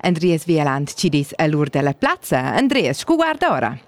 Andreas Wieland ci dis all'ur della plazza. Andreas, scu guarda ora?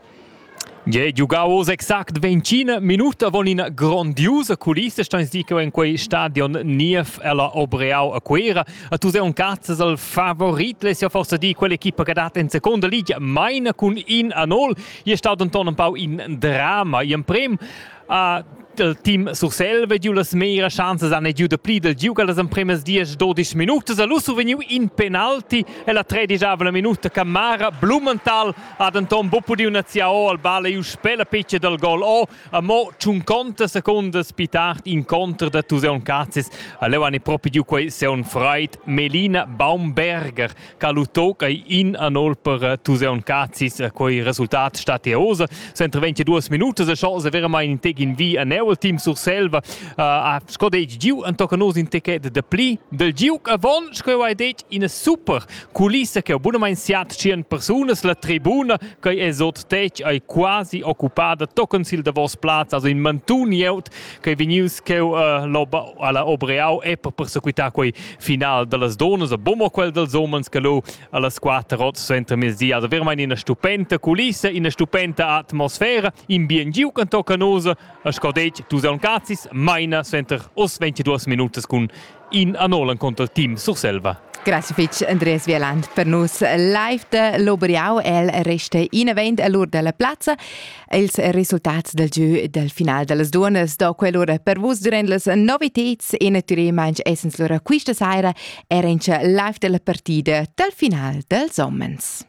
Ie, giugau oz exact 25 minuta von in grandiusa culissa steins di che in quei stadion Niev ella Obreau a Cuera. A tu sei un cazzas al favorit, les ja forse di quell'equipa che dat in seconda liga maina cun in a nol. Ie staut anton un pau in drama, in prem ha il team Surselva giu las meras schanzas han giu dapli dal giugar las empremas diesch dodisch minutas a Lusso vegniu in penalti e la tredigiava minuta Camara Blumenthal ha denton bu pudiu naziar o al ball e uspè la piccia dal gol o a mo tschun conta secundas pi tard incontr da Tuseon Cazis a leu han propi giu quei seun freid Melina Baumberger Ca lu tocca in a nol per Tuseun Cazis, quei resultat statios. Sentra 22 minutas e chas veramain in tec in vi a neu team Surselva ha sco detg giu en tocca nos in techet de pli del giu avon sco hai detg in super culissa che bunamain siat 100 persunas la tribuna che esot tec ai quasi occupada tocken sil davos plaz also in mantun jeut quei vegnius cheu alla Obreau Epp per sequitar quei final dallas donas a Bomo quel dels homens che lu allas quater rots suenter mezdi ad haver mein ina stupenda culissa, ina stupenda atmosfera, in bien giu can tocca nos a scodetg tu sei un cazis, maina suenter os 22 minutas cun In anol encunter team Surselva. Grazie fitg Andreas Wieland per nus live da l'Oberiau. El resta inavent a l'ur della plazza. Els resultats del gieu del final dellas duonas do quell'ura per vus durant las noviteds e naturalmente essens lura questa sera era in live della partida del final dels homens.